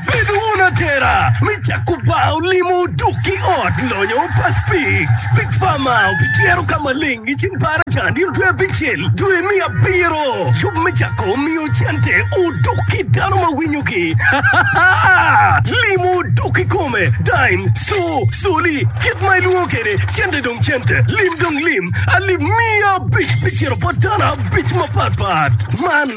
Bed wun atera me cako bar olimo dok ki ot lonyo pas pig. Pig Farma obityero ka maleng i ceng par acan nino dwe abicel dwe me abiro. Yub me cako miyo cente odok ki dano ma winyo gi. Limo odok i kome. Dime, so, soli, kit ma ilwongo kede cente dong cente. Lim dong lim. Alip miya abic pi ciro bot dano abic mapat pat. Man.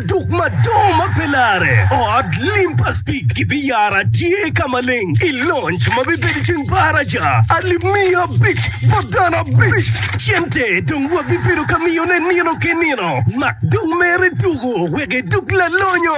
Duk madongo ma pe lare, ot lim pa Speke gibiyaro atye ka maleng i lonj ma bibedo i ceng baraja alip miya abic bot dano abic. Cente dong wabibedo ka miyone nino ki nino, mak dong mere tuku wek idug lalonyo.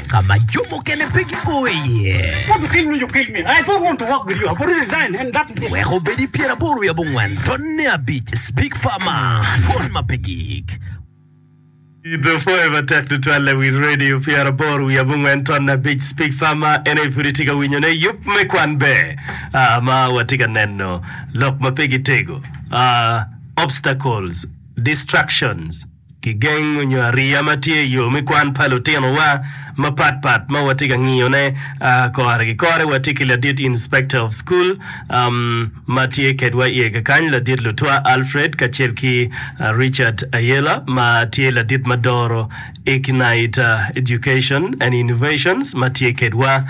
ka ma jo mukene pe gigo iye. Wek obed i pyeraboro wiye abongwen, tonne abic, Big Pharma, Twon ma pe gik. Pidho Forever tek tutwal i wi redio pyeraboro wiye abongwen, tonne abic, Big Pharma, en aye pud itye ka winyone. Yub me kwan ber ma watye ka neno, lok ma pe gitego, obstacles, distractions. Kigeng nyo ariya ma tye i yo me kwan pa lutinowa mapat pat ma watye ka ngiyone kore ki kore. Watye ki ladit Inspector of School ma tye kedwa i ega kany, Ladit Lutwa Alfred, kacel ki Richard Ayela ma tye ladit ma doro Ignite Education and Innovations ma tye kedwa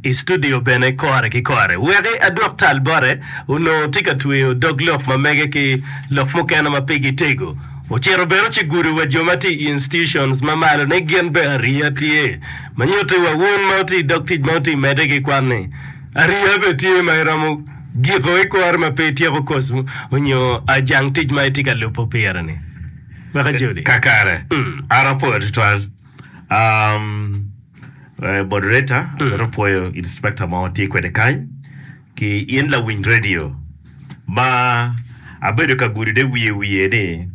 i studio bene kore ki kore. Weki adwok tal bote, onongo tye ka tweyo dog lok ma mege ki lok mukene ma pigi tego. Ocito bene ocigudo wa jo ma tye i institutions ma malo ni gin bene ariya tye, ma nyutti wa wun ma wutye i dog tic ma wutye medde ki kwan ni ariya bene tye ma iromo giko ikore ma pe ityeko koc mu onyo ajang tic ma itye ka lubo pire ni. Weka Joli. Kakare. An apwoyo tutwal. Um, eh, moderator, abino pwoyo inspector mo tye kwede kany. Ki in lawiny radio ma abedo ka gudude wiye wiye ni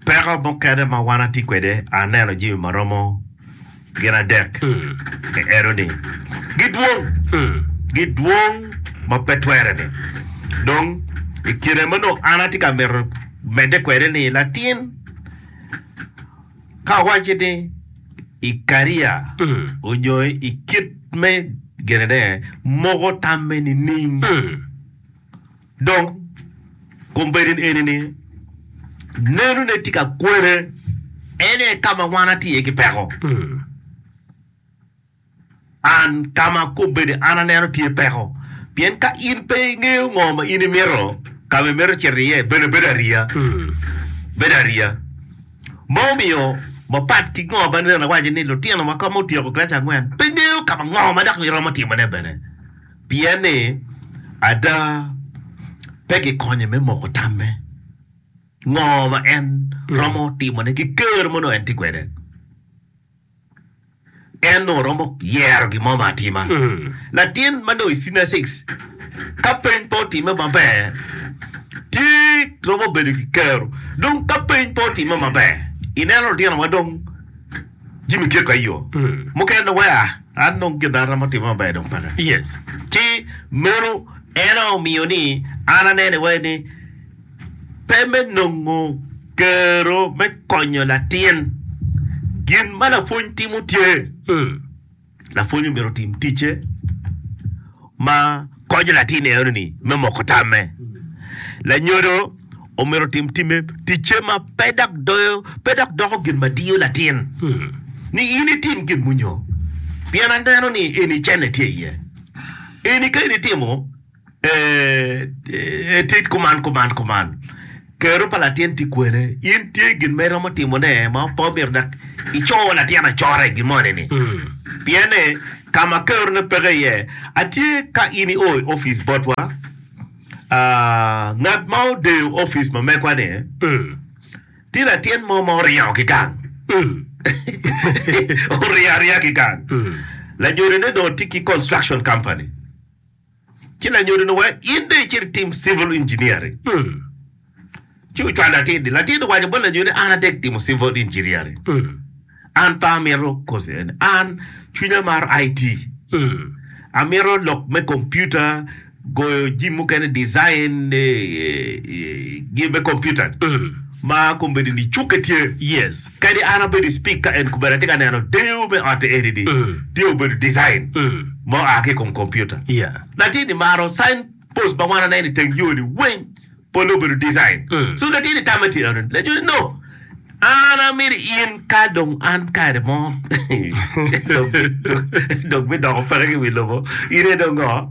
peko mukene ma wan atye kwede aneno jami ma romo gin adek ki eno ni gidwong gidwong ma pe twere ni dong ikine ma nongo an atye ka mito mede kwede ni latin Ka awacci ni Ikaria onyoyo i kit me genene moko tamme nining? Dong kombeddi eni ni nenone tye ka kwene en aye ka ma wan atye iye ki peko. An, ka ma akob bedi an aneno tye peko, pien ka in pe ingeyo ngo ma in imito, ka ma imito cito iye bene bedo ariya. Bedo ariya ma omiyo mapat ki ngo ma aneno awaco ni lutino ma kome otyeko kilaci angwen pe ngeyo ka ma ngo ma dok giromo timone bene, pien ni ada pe gikonye me moko tamme ngo ma en romo timone ki ker ma nongo en tye kwede. en dong romo yero gin mo ma atima. Latin ma dong i senior six ka peny pe otime maber tye romo bedo ki kero dong ka peny pe otime maber ineno lutino ma dong jami keko aye yo mukene dong weko ah an dong gin an romo time maber dong peke Yes. ci meno en aye omiyo ni an anene iwaci ni Pe me nongo kero me konyo latin. Gin ma lapwony timo tye. Lapwony omyero otim ticce ma konyo latin eno-ni me moko tamme. Lanyodo omyero otim time ticce ma pe dok doyo pe dok doko gin ma diyo latin ni in itim gin munyo pien aneno ni eni cene tye iye. Eni ka in itimo Ee, tit kuman, kuman, kuman. Kero pa latin tye kwene. In tye gin ma iromo timone ma pe omyero dok ico latin acora i gin moni-ni. Pien ni ka ma kerone peke iye, atye ka in io i opic botwa, aa, ngat ma odeyo opic ma megwa-ni, tye latin mo ma oryango ki gang. Orye arya ki gang. Lanyodone dong tye ki construction company. ci lanyodo ni wa in dong icit itim civil engineering. Mm. Ci ocwalo latin ni, latin owaco bot lanyodo ni an adek timo civil engineering. Mm. An pe amito kosi eni, an cwinya maro IT. Mm. Amito lok me kompiuta, goyo jim mukene, design, eh, eh, eh, gi me kompiuta. Mm. Ma kombeddi ni cukke tye. Yes. Kadi an abedo i speak ka en kubera tye ka neno deyo me otte eni ni tye obedo design ma oa ki i kom computer. Yeah. Latin ni maro sign post ma wan aneno i teng yo ni weng polle obedo design. So latin ni tamme tye eno. Latin ni no. An amito in ka dong an kare mo dong dong bidoko peke ki wi lobo in aye dong ngo?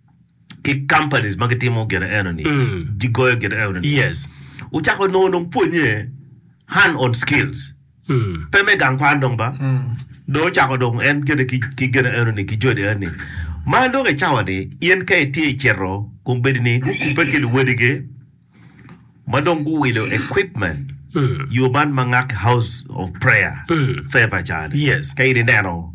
ki companies ma gitimo gin eno ni gigoyo gin eno ni Yes. wucako nongo dong pwonye hand on skills Mm. pe me gang kwan dong ba dong ocako dong en kede ki, ki gin eno ni ki jodi eno ni ma dong i cawa ni in ka itye i cito kun bedi ni gukubbe ki luwadigi ma dong guwilo equipment Mm. yo man ma ngaki house of prayer Mm. favor cani Yes. ka in ineno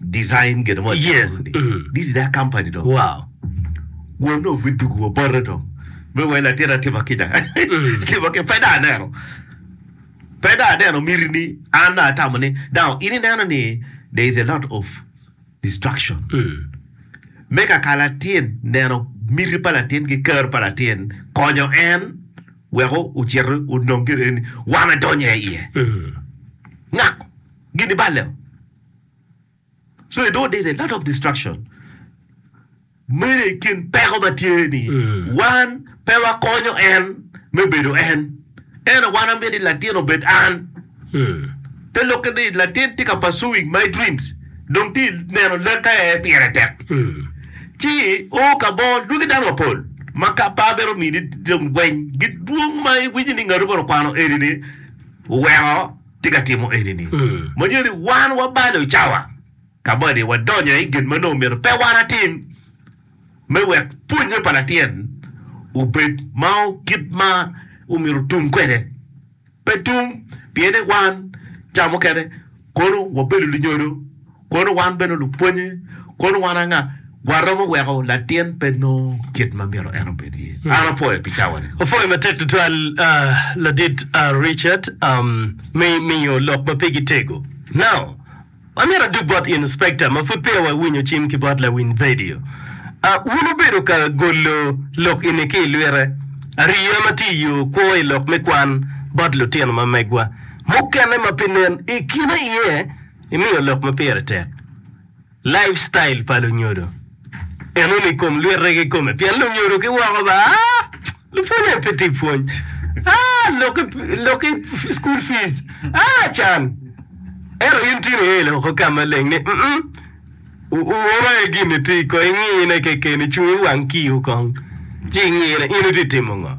design gin mo yes mm. this is their company though wow wonne obidugu wa bote dong me wai latin atima kica mm. tima ke peda aneno peda aneno miri ni an atamo ni now ini neno ni there is a lot of distraction mm. me kaka latin neno miri pa latin ki kar pa latin konyo en weko ocito onong gire ni wame donye iye mm. ngako gini balle o so you know there's a lot of distraction mene i kin peko ma tye ni wan pe wakonyo en me bedo en eno wan amyero i latin obed an te lokke ni latin tye ka pursuing my dreams dong tye neno leka aye pire tek ci o ka mo lwagi dano mapol ma ka pa bene omini dong gweny gidwong ma iwinyo ni ngatu bene okwano eni ni oweko tye ka timo eni-ni. Manyoni wan wabalo i cawa kabadi, wadonyo i gin ma nongo myero pe wan atim me wek pwonnye pa latin obed ma kit ma omyero otum kwede. Pe tum, pien ni wan cawa mukene kono wabedo lunyodo, Kono wan bene lupwonye, kono wan anga? Waromo weko latin pe nongo kit ma myero en obed iye. An apwoyo pi cawa-ni. Apwoyo matek tutwal Ladit Richard me miyo lok ma pigi tego. Now, amyero adug bot Inspector ma pud peya wawinyo cim ki bot Lawiny Vedio. Wun wubedo ka golo lok eni ki i lwite, ariya ma tye i yo kwo i lok me kwan bot lutino ma megwa mukene ma pe nen i kine iye. imiyo lok ma pire tek, lifestyle, pa lunyodo enoni i kom lwite ki kome pien lunyodo ki woko ba lupwony aye pe tye pwony lok ki school fees can ento in tye ni elo woko ka maleng ni woro aye gin itye kong ingine keken icung iwang kiyo kong ci ingine in itye timo ngo.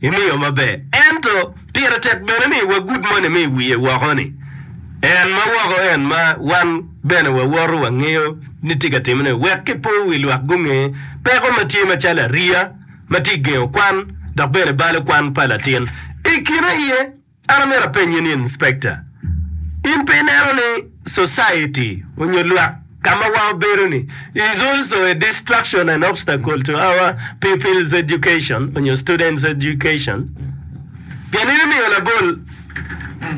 imi yo maber. Ento, pire tek bene ni wagud moni me i wiye woko ni, En ma woko en ma wan bene wawoto wangeyo ni tye ka timone, wek kipo wi lwak gunge peko ma tye macalo ariya ma tye gengo kwan dok bene balo kwan pa latin i kine aye An amyero apenyi ni, Inspector, in pe ineno ni society onyo lwak ka ma wa obedo ni is also a distraction and obstacle to our people's education onyo students education? Pien in imiyo labol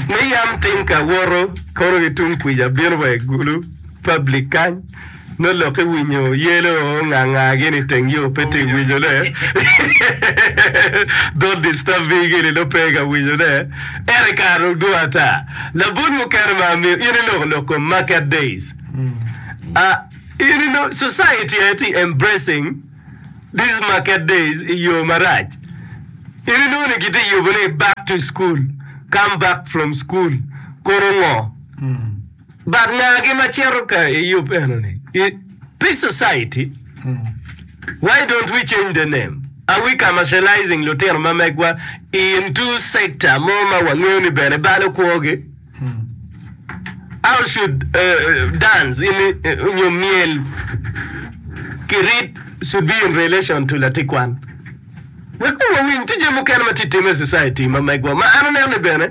me yam tinka woto kono ki tung kwica bino wa i gulu, public, kany. Nongo lok ki winyo yelo nganga gini iteng yo pe ti winyo ne don't disturb me gini nongo pe ka winyo ne ere kare odwo ata labun mukene ma amiyo in iloko lok kom market days ah in ino society aye ti embracing this market days iyo marac in inongo ni giti yubo ni back to school come back from school kono ngo But ngagi ma cito ka i yub enoni i Peace Society, Why don't we change the name? Are we commercializing lutino ma megwa into sector mo ma wangeyo ni bene balo kwogi? How should uh, dance in, uh, nyo myel ki rit should be in relation to latikwan? Wek wawiny tije mukene ma tye timme i society ma megwa ma an aneno ni bene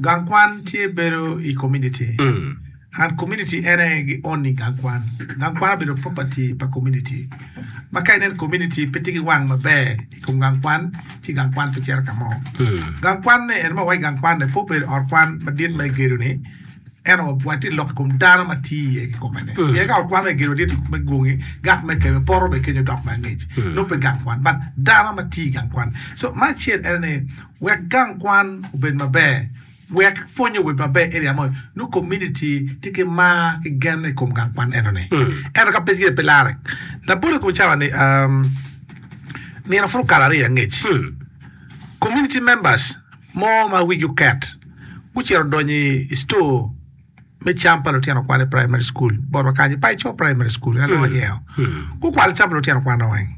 Gang kwan tye bedo i komuniti. And komuniti en aye gi own-ni gang kwan. Gang kwan obedo property pa komuniti. Ma ka inen komuniti pe tye ki wang maber i kom gang kwan, ci gang kwan pe cito ka mo. Gang kwan-ni en ma wawaco gang kwan-ni pe obedo ot kwan madit ma igedo-ni, ento watye ka lok i kom dano ma tye iye kikome-ni. Pien ka ot kwan ma kigedo madit me gwogi, gang me kebe, poto me kenyo dok me angec, nongo pe gang kwan, but dano ma tye i gang kwan. So, me acel en aye ni. Wek gang kwan obed maber. Wek pwony obed maber area moni, nongo kominiti tye ki mar ki gen i kom gang kwan enoni. Ento ka pe gire pe larre, labolo i kom cawa ni um, nino pud okalo aryo angec, kominiti members mo ma wigi oket gucito odonyo i i store me cam pa lutino kwan i primary school botwa kany i Paico primary school ena lwongo ni eo. Gukwalo cam pa lutino kwanwa weng.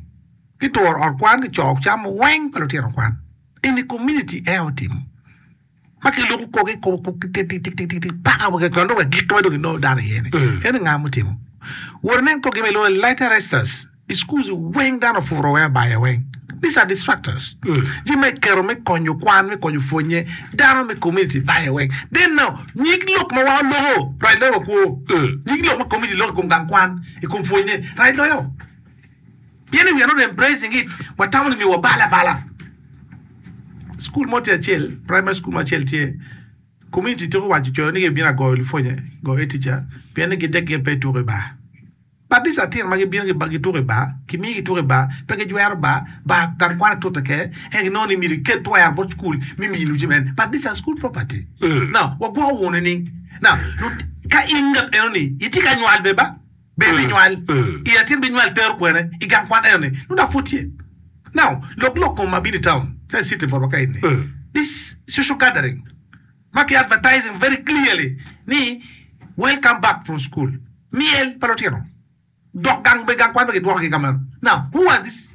ki turo ot kwan ki coo cam weng pa lutino kwan in community aye otimo ma ki luku kor ki kor kor ki tik tik tik tik paka wek kwan dong agikki ma dong ki nongo dano iye ni en ni nga mutimo wor nen kor gima ilwongo ni later resisters schools weng dano ofuro weng abayo weng these are distractors ji ma ikero me konyo kwan me konyo pwonye dano me community bayo weng then now nyig lok ma wa oloko right loyo wa kwo nyig lok ma community loko i kom gang kwan i kom pwonye right loyo Pien we are not embracing it, watamo ni myero wabal abala. Cukul mo tye acel, primary school mo acel tye, community tuku waco coyo ni gibino agoyo lupwonye, goyo head teacher, pien ni gidek gin pe gituko i bar. But these are things ma gibino ki ba gituko i bar, kimiyo gituko i bar, pe gijwero bar, bar gang kwana tute ke, eka ginongo ni myero iket twero bot cukul me miyo luci mene. But these are school property. Now, wagwoko wunu nining? Now, lut, ka in ngat enoni, itye ka nywal be ba? Bed me nywal i latin binywal tero kwene i gang kwan eno ni nongo dok pud tye. Now, lok lok kom ma bino i town ca i city for wa ka eni, this social gathering ma ki advertising very clearly ni welcome back from school, myel pa lutino, dok gang be gang kwan be gidwoko gi ka meno. Now, who are this?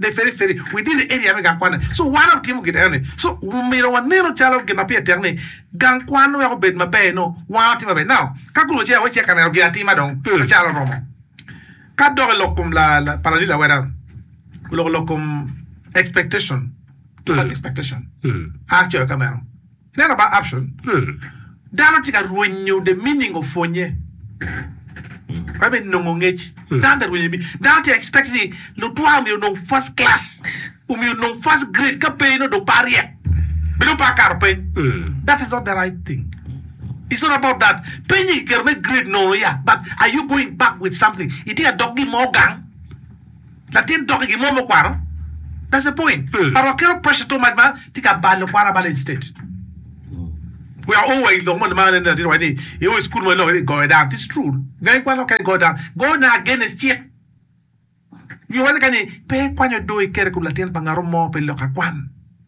the feri feri within the area me gang kwanne so wan watimo gin enoni so omyero wanenu calo gin ma pire tek ni gang kwan wek obed maber nongo wan watimo maber now ka kulu ce awacci ka neno gin atima dong acalo oromo ka dok ilok kom la la pa ladit laweta oloko lok kom expectation too much expectation a coyo ka meno Neno ba Abson, dano tye ka rwenyo the meaning of pwonye wek me nongo ngec. Dano tye ka rwenyo, dano tye ka expect ni lutwa omyero onong first class, omyero onong first grade ka pe nongo dong pe aryek be dong pe akato peny. That is not the right thing. It's not about that. Penyi kiketo me grade nono ya but are you going back with something? Itye ka dok gin mo gang? Latin toki gi mo me kwaro that's the point but wa keto pressure too much ma tye ka balo kwaro abala instead we are all wa i lok moni ma aneno latin owaco ni i o i school mo iloko ni goyo dano this true gangi kwano ka igoyo dano go ne against cik nyo waco kany ni pe ikwanyo do ikere kom latin pa ngato mo pe lok akwan.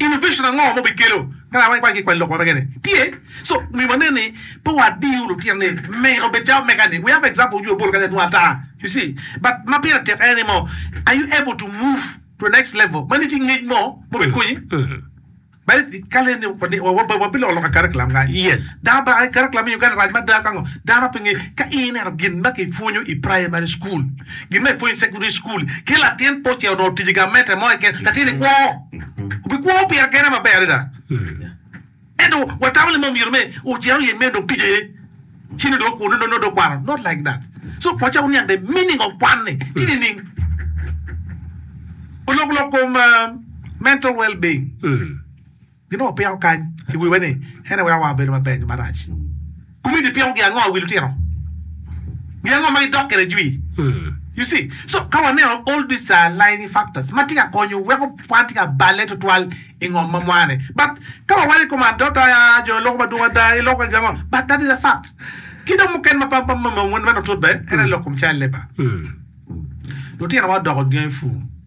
Innovation ango ma obikelo ka dano gikwayo ki kwai lok ma mege ni? Tye. So myero wane ni pe wadiyo lutino ni me obed calo mega ni. We have example of you Obolo kanya adwong ata. You see. But ma pire tek en ni mo are you able to move to the next level ma nongo itye ki ngec mo ma obikonyi? Badi ka leni wabiloko loka curriculum kany. Dano ba curriculum me Uganda rac mada ka ngo? Dano pe ngeyo. Ka ineno gin ma kipwonyo i primary school. Gin ma ipwonyo i sekondari cukul ki latin pe ocito dongo tic i gamente mo keken, latinni kwo. Obikwo pire kene maber adada. Ento watamo ni ma omyero me ocito i amen dong tic aye ci nongo dong okwo, nongo dong okwano. Not like that. So pwocce wun niang the meaning of kwan-ni ci nining. Olok lok kom mental well being. Gin onongo piko kany i wiwa ni en aye weko wa obedo maber nyo marac? Kumiti piko gin ango i wi lutino? Gin ango ma gidok kwede jwi? You see? So, ka waneno all these aligning factors ma tye ka konyo weko wan tye ka balle twatwal i ngom ma mwane. But, ka wawaco i kom adot, aya, jo loko madwong ada, i loko gin ango? But that is a fact. Ki dong mukene ma pa meno tut bene, en aye lok kom child labour. Lutinowa odoko dyangi pur.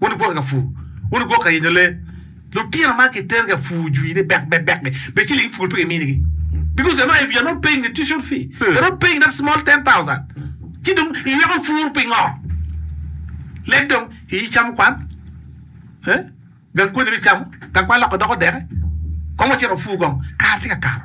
Wun wugwokke ka pur, wun wugwokke ka yenyo lee. Lutino ma kiter ka pur jwi ni bek bek bek-ki, be ciling pur pe kiminigi? Because you're not, you're not paying the tuition fee, you're not paying that small ten thousand. Ci dong iyweko pur pingo? Leb dong iyi camo kwan, eh? Gang konyere icamo, gang kwan loko idoko deke. Kong wacit wapur kong, kare tye ka kato.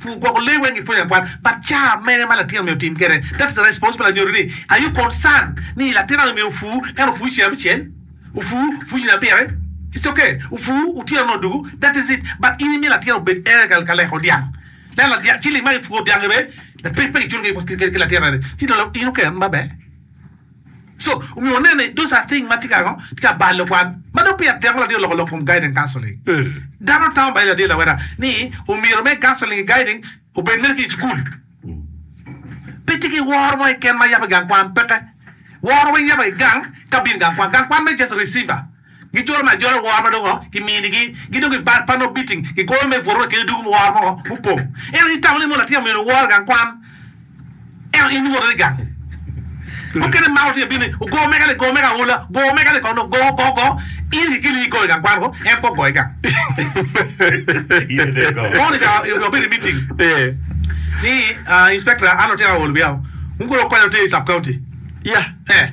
Pur gwoko lee weng ipwonyo akwal but car mene ma latin omyero otim kede that's the responsible I nyuto ni are you concern ni latin ani omyero opur ento opur ceng abicel opur opur ceng abite it's ok opur otyeno nongo odugu that is it but in imiyo latin obed ere ka leko dyang leko ciling ma ki puro dyang gi bene pe ki culo ki latin ani ci dong in okelone maber. So, omiyo waneno ni those are things ma tye ka ngo? Tye ka balo kwan. Ma dong peya teko ladit oloko lok from guiding counseling. Dano tamo bayo ladit lawotta ni omyero me counseling ki guiding obed mere ki i cukul. Pe tye ki woro mo keken ma yabo i gang kwan, peke. Woro weng yabo i gang ka bino i gang kwan. Gang kwan mere just a receiver. Gi jolo ma ajolo woro ma dong kimini gi gi dong gi bad panno biting ki goyo me bworo kede dugu woro mo mupong. Ento ni tamo ni mono atye amyero woro gang kwan ento in iwoto ni gang mukene ma otye bini ogo mega ni go mega aula go mega ni kono go go go in kikeli ni igoyo gang kwan go en pe ogoyo gang mono ca wabedo imiting ni inspector an otye aol wiya wun kono wukonya wutye i sub county yeah eh.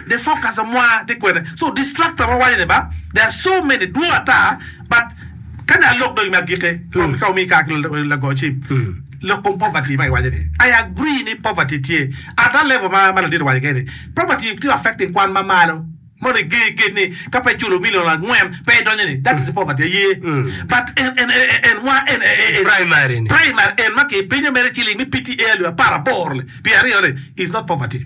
The focus of mwa tye kwene so distractor ma wawaco ni ba there are so many dwong ata but kani alok dong me agiki kong ka wamiyi kar ki lago cim lok kong poverty ma iwaco ni I agree ni poverty tye at that level ma ma ladit owaco kene ni poverty tye affecting kwan ma malo mono i ger gate ni ka pe iculo million angwen pe idonyo ni that is poverty aye but en en en mwa en en Primary ni. primary en ma kipinyo mere ciling me PTA alip apar aboro pyeraryo ni is not poverty.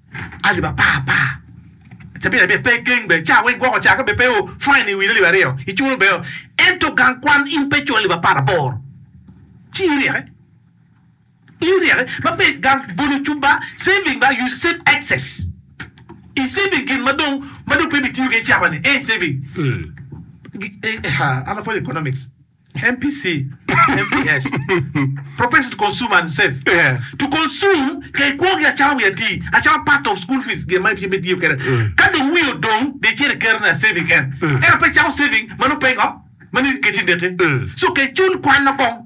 alip apar par cabit abit pe geng bene ca weng gwoko ca ka bene pe o fine i wi alip aryo i culo bene o ento gang kwan in pe iculo alip apar aboro ci in iryeke in iryeke ma pe gang bolo cub ba saving ba you save excess i saving gin ma dong ma dong pe ibitiyo kede i cama ni en saving an apwonyo economics. MPC, MPS, Propensity to Consume and Save. Yeah. To consume, ka ikwo gi acama wi atii, acama part of school fees gin ma ibyem itiyo kede. Ka dong wi odong, de icer iketo na saving en. Ento pe icako saving ma nongo pe ingo, ma nongo iketi neki. So ka icul kwan nongo kong.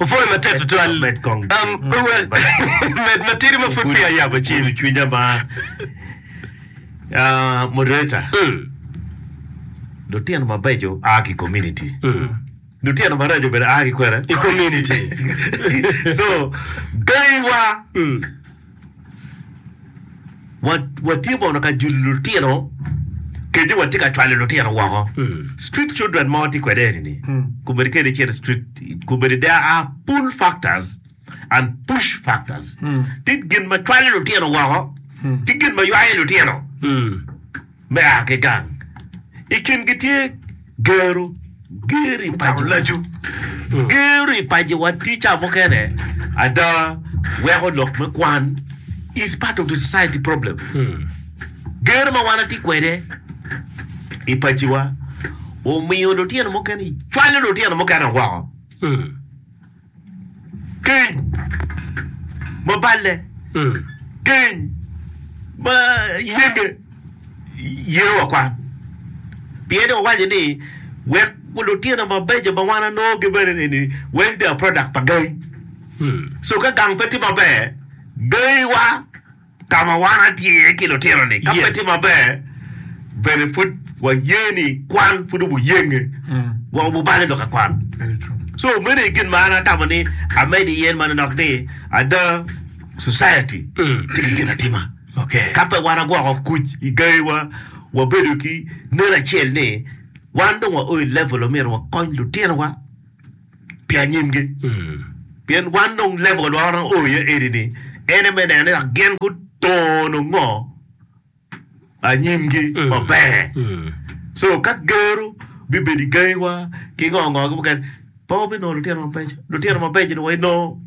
Opwoyo matek tutwal. Med matidi ma pud peya ayabo cim. Gudo cwinya ma. Ah, moderator. Lutino mabeco a ki community. Lutino maraco bene a ki kwene. I community. So, beyi wa. Watye mono ka julo lutino kenyo watye ka cwalo lutino woko street children mo watye kwede eni ni kombedi kene icito street kombedi there are pull factors and push factors tye gin ma cwalo lutino woko ki gin ma ywayo lutino. me a ki gang. I kingi tye Gero, Geri, Paco Laco. Geri, Paco wa ticca mukene ada weko lok me kwan is part of the society problem. Gero ma wan atye kwede i Paco wa omiyo lutino mukene cwalo lutino mukene woko. Keny ma balle, keny ma yenge ye wa kwan. Pien wawaco ni wek lutino mabeco ma wan anongo gi bene ni weng bia product pa gangi. So ka gang pe tye maber, gangi wa. Ka ma wan atye iye ki lutino-ni, ka pe tye maber, bene pud waye ni kwan pud obuyenge, wa obuballe lok ki kwan. So, meno aye gin ma an atamo ni amed iye, ma nonok ni ada Society tye ki ginatima. Ka pe wan agwoko kuc i gayiwa, wabedo ki neno acel ni wan dong waoyo i level ma myero wakony lutinowa. pi anyimgi. Pien wan dong level wa ma wanongo oo iye eni ni ene me neno ni gin gutono ngo anyimgi maber. So ka geru bibedo i gangiwa ki ngo ngo ki mukene pe wabinongo lutino mabeco. Lutino mabeco ni wa inongo.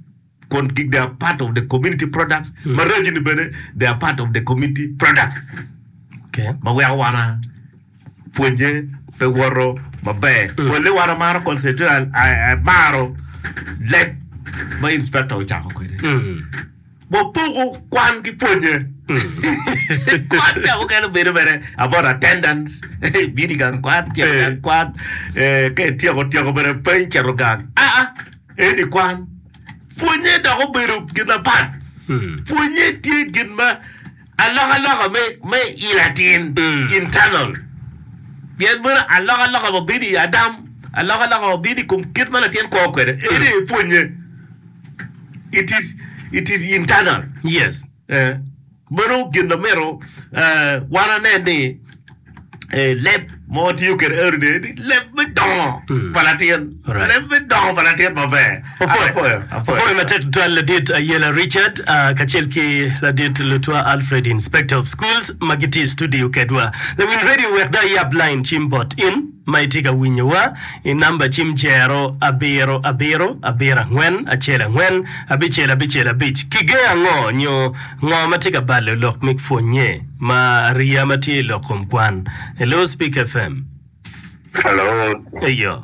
Kon gig they are part of the community products ma raji ni bene they are part of the community products Okay. ma weko wana pwonye pe woto maber pole wana maro concentrate al- a- a- maro leb ma inspector ocako kwede Mm. wapoko kwan ki pwonye kwan ka mukene bedo mere about attendance bini gang kwan tyeko gang kwan eh, ka ityeko tyeko bene peny cito gang aa Eni kwan. Pwonye dok obedo gin apat. Pwonye tye gin ma alokaloka me me i latin internal. Pien meno alokaloka ma bino i Adam, alokaloka ma bino i kom kit ma latin kwo kwede. Eni aye pwonye. It is it is internal. Yes. Eh. Meno gin ma myero wan anen ni leb ma watiyo kwede eno ni leb me dongo pa latin, leb me dongo pa latin maber. Apwoyo matek tutwal Ladit Ayela Richard kacel ki Ladit Lutwa Alfred Inspector of Schools ma gitye i studio kedwa. Lawiny Radio wek dong iyab line cim bot in. ma itye ka winyo wa i namba cim zero abiro abiro abiro angwen acel angwen abicel abicel abic ki ge ango nyo ngo ma tye ka balo lok mik pwonye ma ariya ma tye ilok kom kwan hello speak fm. Hello. Eyo.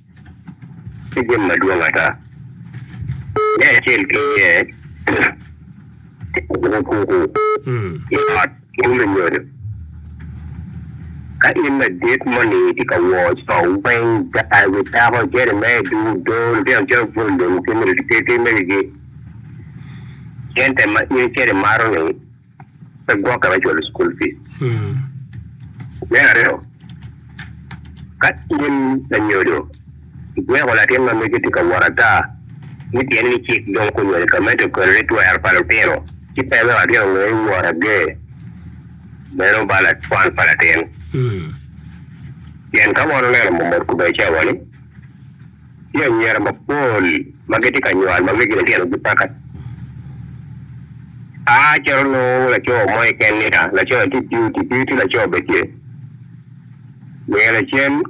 tye jami madwong ata. Me acel ki iye, tye ka kwo kwo i ot mo me nyodo. Ka in ladit moni itye ka wor co weng, gaa ki dako, jeri me dul odoo, lutino calo bwolo lum ki mege ki cente ma in icito imaro-ni, pe gwokke me cwalo cukul fic. Me aryo, ka in lanyodo igweko latin ma mege tye ka wot ata ni pien ni cik dong onywali ka medo i kare ni twero pa lutino ci pe wek latin onge ni wot ager meno ba kwan pa latin. Pien ka wan oneno mot kobedi cawa ni Tye anyira mapol ma gitye ka nywal ma wegine tino gipaka. A Calo nongo laco mo keken nia, laco-ni tye piu, ti piu ti laco bene tye. Ngeya lacen,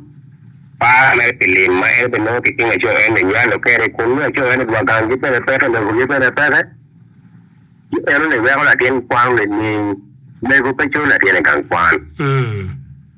par mere pi lim ma en bene nongo ki cing laco eni ni nywalo kede, kun nongo laco eni dwa gangi bene peke, lobogi bene peke. Ci eno ni weko latin kwan-ni ni mego pe coyo latinne gang kwan.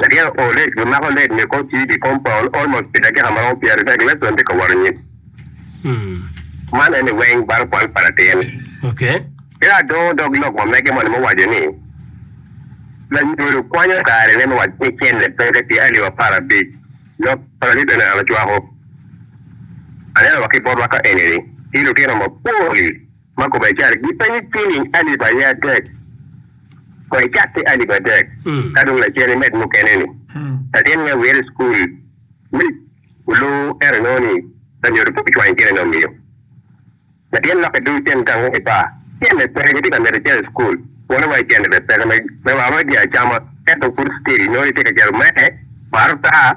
Lagik o kor lec gimako lec nyo kor cwiny i kom pol almost pi dakika maromo pyer adek lec dong tye ka wot anyim. Man en ni weng baro kwan pa latin. Ciro adongo dog lok ma mege moni muwaco ni, Lanyodo kwanyo kare ne me waco ni cente pe ka tye alip apar abic lok pa lalib eno an acwako. Aneno wa ki botwa ka eni ni tye lutino mapol. Ma kome cal, Gipenyi ciling alip aye adek, kong icak ki alip adek, ka dong lacen imed mukene-ni. Latin me Wire School mic oluu ero nongo ni lanyodo pe ocwanyo cene nongo miyo latin lok idul cen gang woko i bar. Cene peke kitye ka mito cito i school, wole wa icene bene peke me wa ma giacama ento pud still inongo itye ka cito me bar otaa.